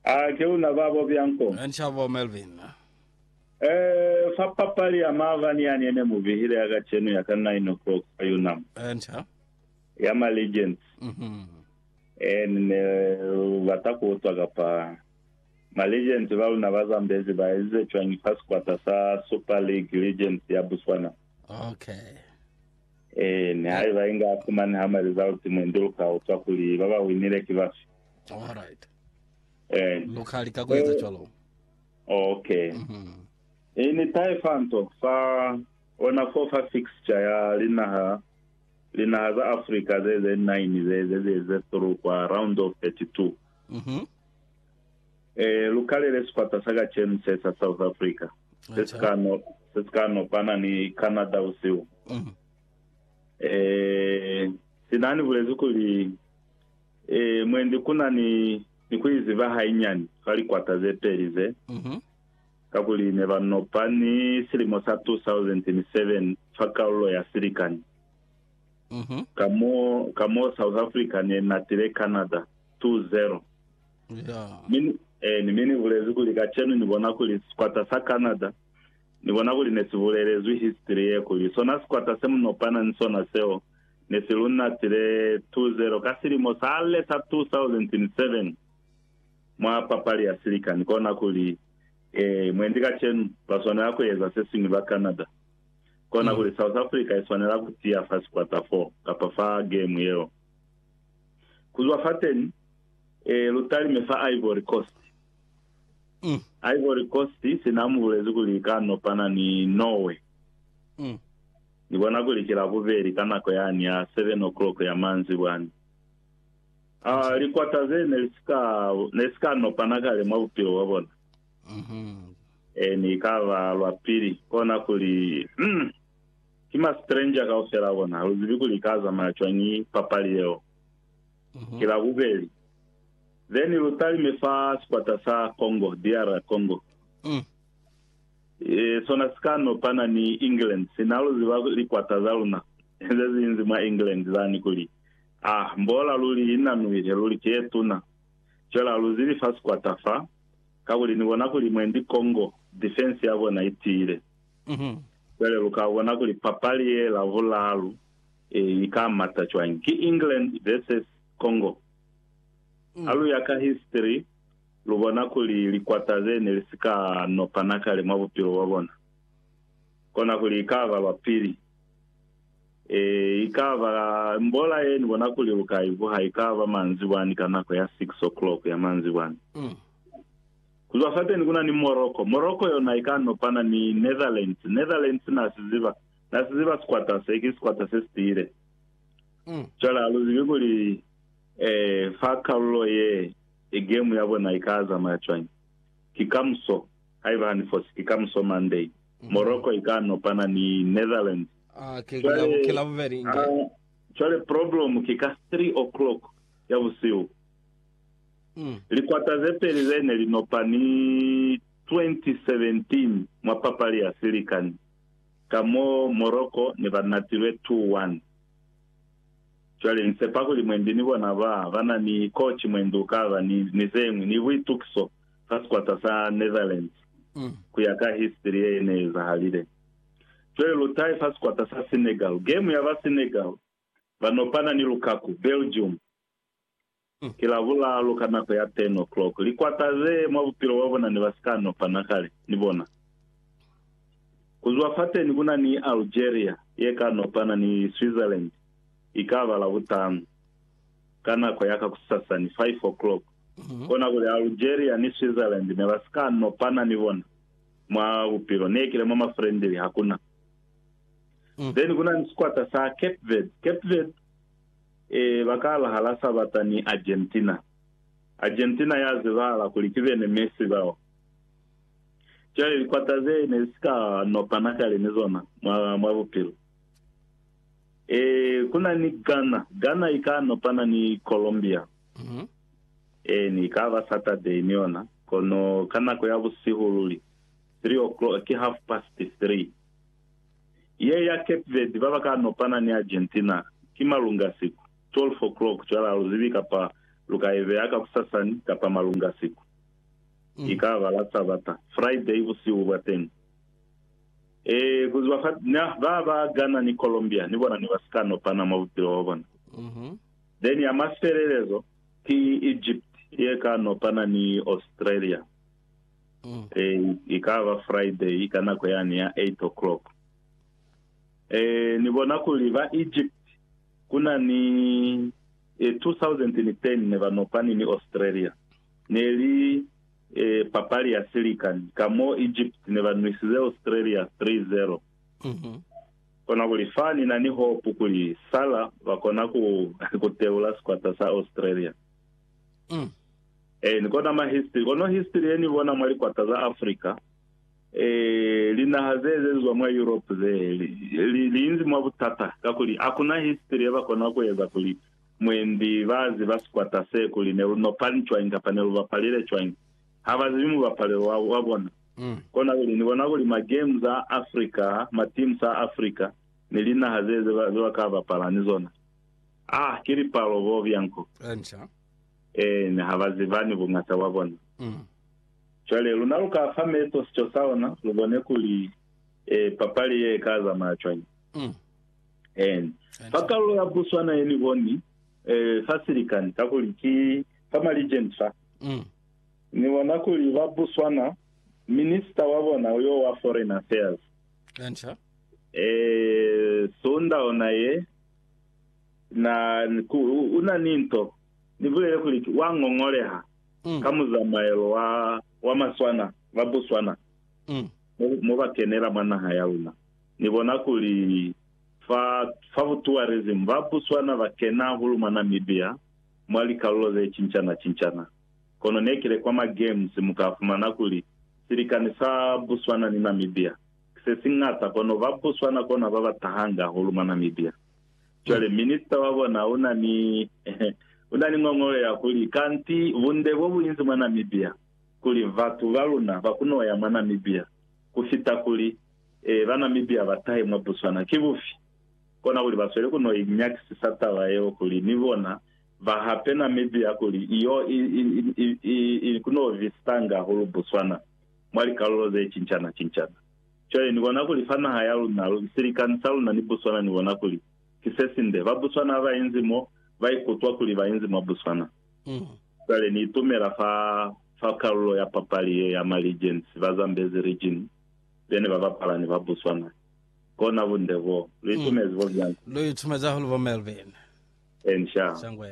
A ke una babo bia nko? Nshabo Melvin. Eh, fa papali ya maabani yani yene mu bihile ya kacenu ya ka nine o'clock fa Unam, Eh, nsha. ya ma Legends, Mhm. eh, ni ne bata ku utwa kapa ma Legends ba luna ba Zambezi ba ezize cwañi fa sikwata sa Super League Legends ya Botswana. Okay. Eh, ni haiba inga fumani ha ma result mwendi lu ka utwa kuli ba ba winile ki bafi. Alright. Eh, Lu ka lika ku eza cwalo. okay. Mhm. E ni tae fa nto fa ona fo fa fixture ya linaha linaha za Africa ze ze nine ze ze ze ze through kwa round of 32. Mhm. Eh, lu kalele sikwata sa kacenu se sa South Africa se se Acha. ka no se se ka nopana ni Canada usiu. Mhm. Eh, sinani bulezi kuli Ee, mwendi ku na ni, ni ku iziba hainyani fa likwata ze peli ze, Mhm. kakuli ne ba nopa ni silimo sa 2007 fa kalulo ya silikani, Mhm. ka mo, ka mo South Africa ne natile Canada 2-0. Ya. Mi ni- eh, ni mi ni bulezi kuli kacenu ni bona kuli sikwata sa Canada, ni bona kuli ne si bulelezwi history ye kuli sona sikwata se mu nopana ni sona seo, ne si lu natile 2-0 ka silimo sale sa 2007 mwa papali ya silikani, kona kuli, Ee, mwendi kacenu, ba swanela ku eza se siñwi ba Canada. Kona kuli South Africa i swanela ku tiya fa sikwata fo, kapa fa gemu yeo. Ku zwa fateni, ee, lu talime fa Ivory Coast. Ivory Coast sina mu bulezi kuli i ka nopana ni Norway. Ni bona kuli ki Labubeli ka nako yani ya seven o'clock ya manzibwa ni a likwata ze ne li si ka, ne si ka nopana kale mwa bupilo bwa bona. E ne i ka ba lwa pili. Kona kuli, mm, ki ma stranger kaufela a bona. Ha lu zibi kuli i ka zamaya cwañi papali yeo. Ki Labubeli. Then lu talime fa sikwata sa Congo, DR Congo. Sona si ka no pana ni England. Si na lu ziba likwata za luna ze zinzi mwa England zani kuli, Ah, mbola luli i na nuihe luli ki ye tuna. Cwela lu zili fa sikwata fa, kakuli ni bona kuli mwendi Congo, defense ya bona i tiile. Cwale lu ka bona kuli papali ye la vulalu i ka mata cwañi. Ki England versus Congo. Ha lu ya ka history, Lu bona kuli likwata ze ne li si ka nopana kale mwa bupilo bwa bona, kona kuli i ka ba lwa pili. Ee, i ka ba mbola ye ni bona kuli lu ka i vuha, i ka ba manzibwani ka nako ya six o'clock ya manzibwani. Ku zwa fateni ku na ni Morocco. Morocco yona i ka nopana ni Netherlands. Netherlands na si ziba, na si ziba sikwata se, ki sikwata se si tiile. Cwale ha lu zibi kuli, ee, fa kalulo ye, e game ya bona i ka zamaya cwañi? Ki kamuso, haiba ha ni fosi, ki kamuso Monday, Morocco i ka nopana ni Netherlands. Cwale, a, cwale problem ki ka three o'clock ya busihu. Likwata ze peli ze ne li nopa ni 2017 mwa papali ya silikani, ka mo Morocco ne ba natilwe two one. Cwale nsepa kuli mwendi ni bona ba ba na ni koci mwendi ukaba ni, ni zeñwi, ni buitukiso fa sikwata sa Netherlands, ku ya ka history ye ne ezahalile. Cwale lutai fa sikwata sa Senegal, game ya ba Senegal ba nopana ni Lukaku, Belgium, Ki Labulalu ka nako ya 10 o'clock, likwata ze mwa bupilo bwa bona ne ba si ka nopana kale, ni bona. Ku zwa fateni ku na ni Algeria ye ka nopana ni Switzerland, i ka ba Labutanu, ka nako ya ka kusasani, 5 o'clock. Kona kuli Algeria ni Switzerland ne ba si ka nopana, ni bona, mwa bupilo. Ne kile mwa mafrendili, hakuna. Then ku na ni sikwata sa Cape Verde. Cape Verde, Ee, ba kala hala Sabata ni Argentina. Argentina ya zibahala kuli ki bene Messi bao. Cwale likwata ze ne si ka nopana kale ni zona mwa, mwa bupilo. Ee, ku na ni Ghana. Ghana i ka nopana ni Colombia. Ee, ni ka ba Saturday ni yona, kono ka nako ya busihu luli, three o'clock, ki half past three. Ye ya Cape Verde ba ba ka nopana ni Argentina ki malungasiku, 12 o'clock, cwale ha lu zibi kapa lu ka i beya kakusasani kapa malungasiku. I ka ba la Sabata, Friday busihu bwa teñi. Ee, ku ziba fa, na, ba, ba Ghana ni Colombia ni bona ne ba si ka nopana mwa bupilo bwa bona. Then ya mafelelezo ki Egypt ye ka nopana ni Australia. Eh, i ka ba Friday ka nako yani ya 8 o'clock. Eh, ni bona kuli ba Egypt kuna ni eh, 2010 ne ba nopani ni Australia. Ne li eh, papali ya silikani. Ka mo Egypt ne ba nwisize Australia 3-0. Kona kuli fa ni na ni hopu kuli Salah ba kona ku, ku teula sikwata sa Australia. Ee, ni kona ma history. Kono history ye ni bona mwa likwata za Africa, ee, linaha ze ezezwa mwa Europe ze, li, li, li inzi mwa butata, kakuli hakuna history ye ba kona ku eza kuli mwendi ba ziba sikwata se kuli ne lu nopani cwañi kapa ne lu bapalile cwañi. Ha ba zibi mubapalelo wa, wa bona. Kona kuli ni bona kuli ma games a Africa, ma teams a Africa, ni linaha ze, ze ba, ze ba ka bapala ni zona, Ah, ki lipalo bo bianco. Encia. Eena, ha ba zibani bungata bwa bona. Mm. Cwale, luna lu ka fa meso sico sa ona, lu bone kuli, eh, papali ye i ka zamaya cwañi. Mm. Eena. Encia. Fa kalulo ya Botswana ye ni boni, eh, fa silikani, kakuli ki fa Maligent fa, Mm. ni bona kuli ba Botswana, Minister wa bona yo wa Foreign Affairs, Encia. eh, Suunda ona ye, Na, ku, u na ni nto. Ni bulele kuli ki wa ngongoleha, ka muzamaelo wa, wa maswana, ba buswana, mo, mo ba kenela mwa naha ya luna. Ni bona kuli, fa, fa ku tourism, ba buswana ba kena hahulu mwa Namibia, mwa likalulo ze cincana-cincana. Kono ne kile kwa ma games, mu ka fumana kuli, silikani sa Buswana ni Namibia, sesiñata, kono ba Botswana kona baba tahanga hahulu mwa Namibia. Cwale Minister wa bona una ni una ni ngongolo ya kuli, Kanti bunde bo buinzi mwa Namibia, kuli batu ba luna ba kuno ya mwa Namibia kufita kuli e ba Namibia ba tahe mwa Botswana ki bufi? Kona kuli basweli kuno inyakisisa taba yeo kuli ni bona ba hape Namibia kuli iyo i, i, i, i, i kuno visitanga hahulu Botswana. mwa likalulo ze cincana-cincana. Cwale ni bona kuli fa naha ya luna, lu, silikani sa luna ni Botswana, ni bona kuli ki se sinde. Ba Botswana haba inzi mo, ba ikutwa kuli ba inzi mwa Botswana. Cwale ni itumela fa, fa kalulo ya papali ye ya ma regions, ba Zambezi region, be ne ba bapala ni ba Botswana. Kona bunde boo. Lu itumezi bo byani? Lu itumezi hahulu bo Melvin. Eeni, sha. Sangwe.